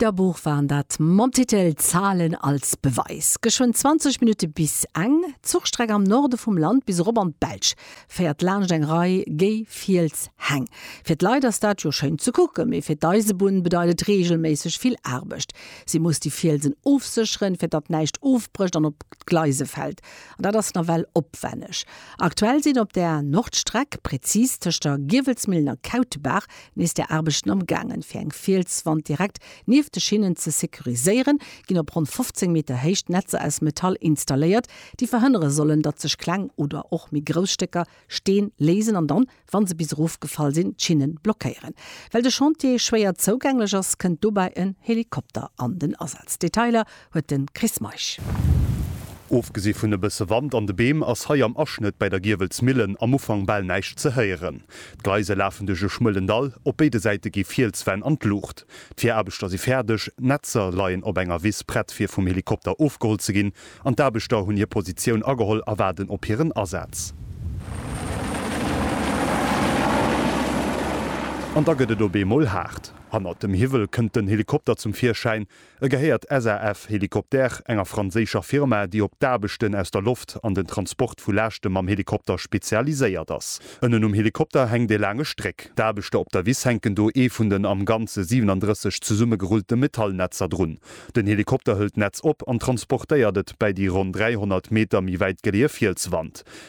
D'Bilderbuch waren dat mam Titel Zahlen als Beweis. Geschwënn 20 Minutte bis eng Zuchstreck am Norde vum Land bis erop an d'Belsch féiert laanscht eng Rei géi Fielshäng. Fir d'Leit ass dat jo schéin ze kucken, mee fir d'Eisebunn bedeit et reegelméisseg vill Aarbecht. Si muss déi Fielsen ofsécheren, fir datt näischt ofbrécht an op d'Gleise fält. An dat ass nawell opwänneg. Aktuell sinn op där Nordstreck, prezis tëscht der Giewelsmillen a Kautebaach, Nees der Aarbechten am gaangen, fir eng Fielswand direkt nieft de Schinnen ze securiséieren, ginn op ronn 15 Meter Héicht Netzer aus Metall installéiert, déi verhënnere sollen, datt sech kleng oder och méi grouss Stécker Steen léisen an dann, wa se bis erof gefall sinn, d'Schinnen blockéieren. Well de Chantier schwéier zougänglech ass, kënnt dobäi en Helikopter an den Asaz. Detailer huet de Chris Meisch. Ofgesi vun e bësse Wand an de Beem ass hei am Aschnëtt bäi der Giewelsmillen am Ufank bal näischt ze héieren. D'Gleise lafen duerch e schmuelen Dall, op béide Säite gi Fielswänn an d'Luucht. D'Viraarbechter si fäerdeg, d'Netzer leien op enger Wiss prett fir vum Helikopter ofgeholl ze ginn an d'Aarbechter hunn hir Positioun ageholl a waarden op hiren Asaz. An da gëtt et op eemol haart. Hannert dem Hiwwel kënnt den Helikopter zum Virschäin, E gehéiert SAF-Hélicoptères, enger franséischer Firma, déi op d'Aarbechten aus der Loft an den Transport vu Laaschte mam Helikopter spezialiséiert ass. Ënnen um Helikopter hänkt e laange Stréck. D'Aarbechter op der Wiss hänken do ee vun den am Ganze 37 zesummegerullte Metallnetzer drun. Den Helikopter hëlt d'Netz op an transportéiert et bäi déi ronn 300 Meter méi wäit geleeë Fielswand.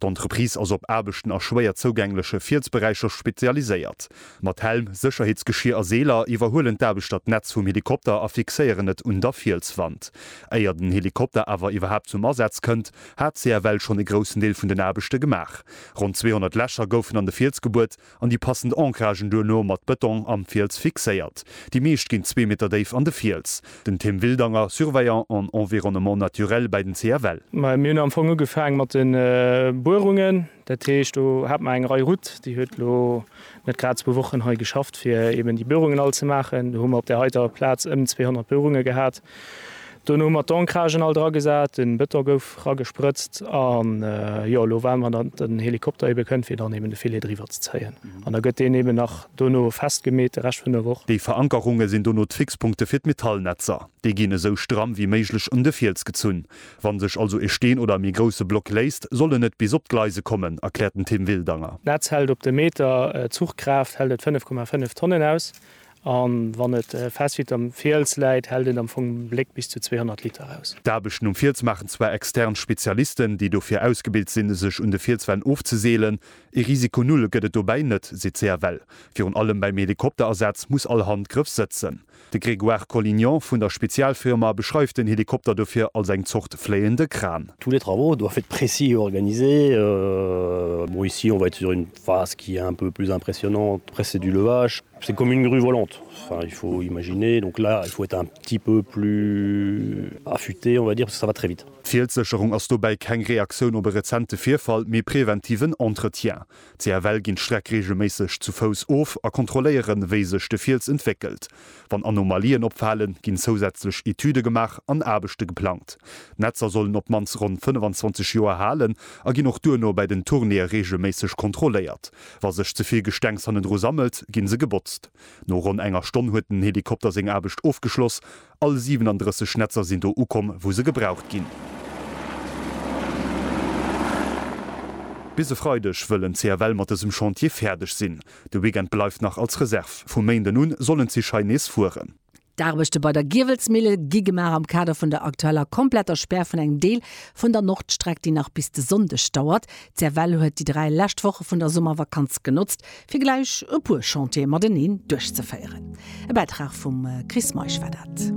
D'Entreprise ass op Aarbechten a schwéier zougängleche Fielsberäicher spezialiséiert. Mat Helm, Sécherheetsgeschier a Seeler iwwerhuelen d'Aarbechter d'Netz vum Helikopter a fixéieren et un der Fielswand. Éier den Helikopter awer iwwerhaapt zum Asaz kënnt, hat CFL schonn e groussen Deel vun den Aarbechte gemaach. Ronn 200 Lächer goufen an de Fiels gebuert an déi passend Ancragen duerno mat Bëtong am Fiels fixéiert. Déi meescht ginn zwee Meter déif an de Fiels. Den Tim Wildanger, Surveillant en environnement naturel bäi den CFL. Mir hunn am Fong ugefaang mat de Buerungen. Dat heescht, do hat mer eng Rei Route, déi huet elo net grad zwou Wochen hei geschafft, fir eeben déi Buerungen all ze maachen. Do hu mer op där heiter Plaz ëm 200 Buerunge gehat. Dono hu mer d'Ancragen all dra gesat, den Beton gouf ragesprëtzt an jo elo waarden mer dat den Helikopter eben kënnt fir dann eben de Filet driwwer ze zéien an da gëtt deen eben nach dono festgemeet de Rescht vun der Woch. Déi Verankerunge sinn dono d'Fixpunkte fir d'Metallnetzer. Déi ginn esou stramm wéi méiglech un de Fiels gezunn. Wann sech also e Steen oder e méi grousse Block léisst, soll en net bis op d'Gleise kommen, erkläert den Tim Wildanger. D'Netz hält op de Meter, d'Zuchkraaft hält et 5,5 Tonnen aus A wann et fest wéi am Fiels läit, hält een am Fong um Bléck bis zu 200 Liter aus. D'Aarbechten um Fiels maachen zwar extern Spezialisten, déi dofir ausgebilt sinn, sech un de Fielswänn ofzeseelen. Ee Risiko null gëtt et dobäi net, seet d'CFL. Virun allem beim Helikopterasaz muss all Handgrëff sëtzen. De Grégoire Collignon vun der Spezialfirma beschreift den Helikopter dofir als eng Zort fléiende Kran. Tous les travaux doivent être précis et organisés. Bon, ici on va être sur une phase qui est un peu plus impressionnante, presque c'est du levage. C'est une commune rue volante, enfin il faut imaginer, donc là il faut être un petit peu plus affûté on va dire, parce que ça va très vite. D'Fielssécherung ass dobäi keng Reaktioun op e rezente Virfall, mee preventiven Entretien. CFL ginn d'Streck reegelméisseg zu Fouss of a kontrolléieren, wéi sech de Fiels entwéckelt. Wann Anomalien opfalen, ginn zousätzlech Etüde gemaach an Aarbechte geplangt. D'Netzer sollen op d'mannst ronn 25 Joer halen a ginn och duerno bei den Tournéeë reegelméisseg kontrolléiert. Wa sech ze vill Gestengs hannendru sammelt, ginn se gebotzt. No ronn enger Stonn huet den Helikopter seng Aarbecht ofgeschloss. All 37 Netzer sinn do ukomm, wou se gebraucht ginn. Bis e Freideg wëll en CFL mat dësem Chantier fäerdeg sinn. De Weekend bleift nach als Reserv. Vum Méinden un sollen d'Zich hei nees fueren. D'Aarbechte bei der Giewelsmille gi gemaach am Kader vun der aktueller kompletter Spär vun engem Deel vun der Nordstreck, déi nach bis de Sonndeg dauert. D'CFL huet déi dräi lescht Woche vun der Summervakanz genotzt, fir gläich e puer Chantiere mateneen duerchzeféieren. E Bäitrag vum Chris Meisch war dat.